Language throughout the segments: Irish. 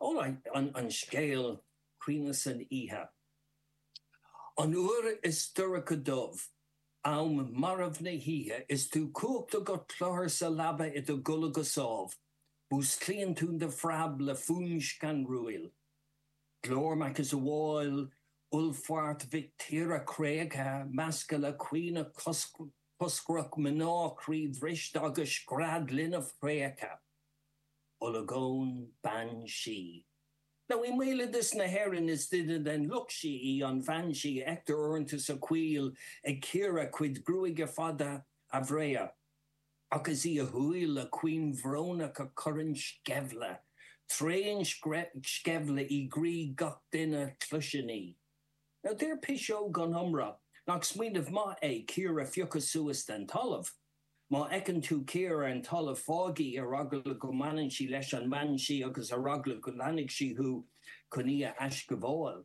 An scéal Caoineadh san oíche. An uair is dorcha dubh, am marbh na hoíche is tú cuachta go cluthar sa leaba i do gcodladh go sámh, músclaíonn tú de phreab le fuaim scanrúil. Glór macasamhail uallfairt mhic tíre créachta, measctha le caoineadh coscrach mná croíbhriste agus scread linbh thréigthe. olagón, bean sí. Now i mbéaloideas na hÉireann is duine den lucht sí í an bhean sí a fheictear uaireanta sa choill ag cíoradh a cuid gruaige fada breá ach is í a huaill chaointe bhrónach a chuireann sceimhle, tréansceimhle i gcroí gach duine a chloiseann í. Now deir piseog gan iomrá nach smaoineamh maith é cíor a phiocadh suas den talamh. Má fheiceann tú cíor ar an talamh, fág í ar eagla go mbaineann sí leis an mbean sí agus ar eagla go leanfaidh sí thú chun í a aisghabháil.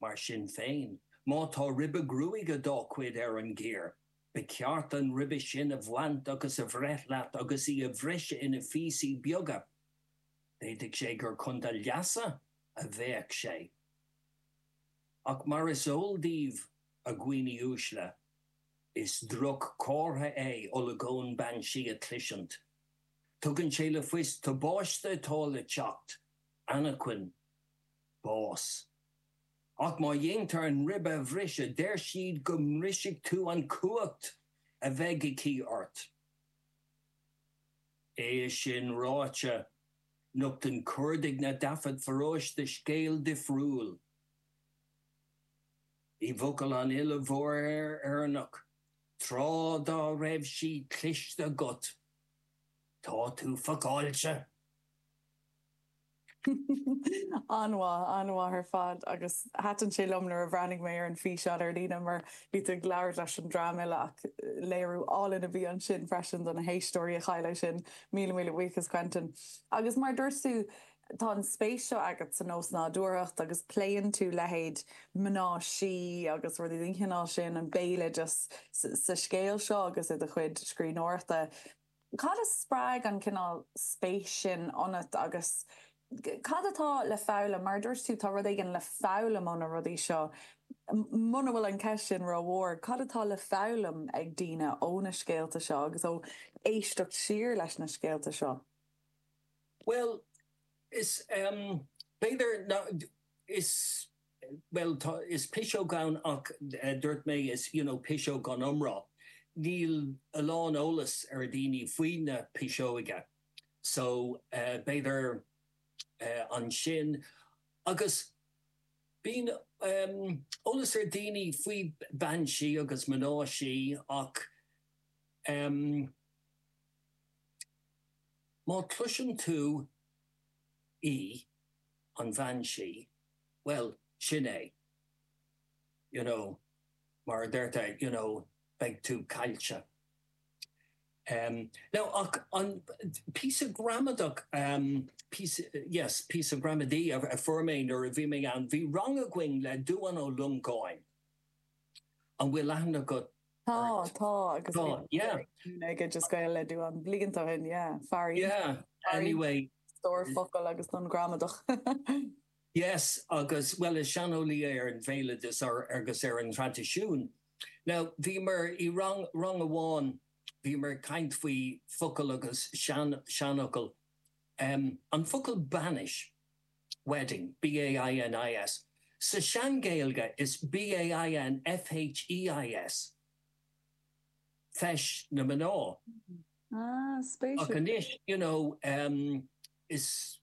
Mar sin féin, má tá ribe gruaige dá cuid ar an gcíor, ba cheart an ribe sin a bhaint agus a bhreith leat agus í a bhriseadh ina phíosaí beaga. D'fhéadfadh sé gur chun do leasa a bheadh sé. Ach mar is eol daoibh, a dhaoine uaisle, Is droch-chomhartha é olagón bean sí a chloisint. Tugann sé le fios tubáiste atá le teacht, anachain, bás. Ach má dhéantar an ribe a bhriseadh deir siad go mbrisfidh tú an cumhacht a bheidh aici ort. É sin ráite, nochtann cuardach na dtaifead paróiste scéal difriúil. I bhfocail an fhile mhóir Éireannaigh, Tráth Dá Raibh Sí, cloiste agat, tá tú fuckáilte! An-mhaith, an-mhaith ar fad agus thaitin sé liom nuair a bhreathnaigh mé ar an físeán ar líne mar bhí tú ag labhairt leis an dream uile ach léiriú álainn a bhí ansin freisin do na héisteoirí a chuala é sin, míle míle buíochas Quentin. Agus mar a dúirt tú, Tá an spéis seo agat san osnádúrthacht agus pléann tú leithéid mná sí agus rudaí den chineál sin, an béaloideas, sa scéal seo agus i do chuid scríbhneoireachta. Cad a spreag an cineál spéis sin ionat agus cad atá le foghlaim, mar a dúirt tú, tá rud éigin le foghlaim ó na rudaí seo. Muna bhfuil an ceist sin rómhór, cad atá le foghlaim ag daoine ó na scéalta seo agus ó éisteacht siar leis na scéalta seo? Bhuel, is, b'fhéidir nach, is, bhuel, tá, is piseog ann ach dúirt mé, is, you know, piseog gan iomrá. Níl a lán eolas ar dhaoine faoi na piseoige so b'fhéidir ansin agus bíonn eolas ar dhaoine faoin mbean sí agus mná sí ach, Má chloiseann tú í, an bhean sí, bhuel, sin é, you know, mar a deirtear, you know, beidh tú caillte. Now, ach um, píosa gramadach, um, yes, píosa gramadaí a fuair mé nuair a bhí mé ann, bhí rang againn le Dubhán Ó Longáin, an bhfuil aithne agat Tá, tá agus bhí mé ag an ollscoil le Dubhán blianta ó shin, yeah, fear iontach, stór focal agus gramadach. Yes, agus, bhuel, is saineolaí é ar an bhéaloideas agus ar an traidisiún. Now, bhíomar i rang, rang amháin, bhíomar ag caint faoi focail agus sean, seanfhocail, an focal 'bainis' Wedding, B A I N I S, sa Sean-Ghaeilge is B A I N F H E I S, Feis na Mná. Ah, spéisiúil. Ach anois, you know, em, is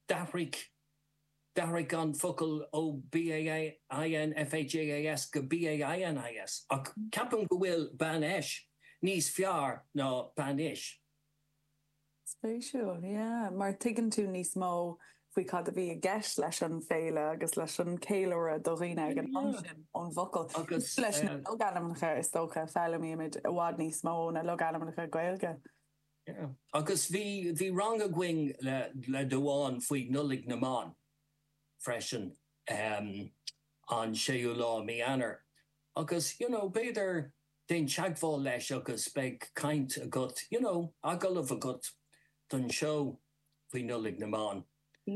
d'athraigh, d'athraigh an focal ó B A I N F H E I S go B A I N I S, ach ceapaim go bhfuil bainfheis níos fearr ná bainis. Spéisiúil, yeah, mar tuigeann tú níos mó faoi cad a bhí i gceist leis an bhféile agus leis an cheiliúradh do dhaoine ag an am sin ón bhfocal. Agus leis na logainmneacha is dócha, foghlaimímid i bhfad níos mó ó na logainmneacha Gaeilge. Yeah, agus bhí, bhí rang againn le, le Dubhán faoi Nollaig na mBan freisin an séú lá i mí Eanáir agus, you know, b'fhéidir, déan teagmháil leis agus beidh caint agat, you know, agallamh agat don seó faoi Nollaig na mBan.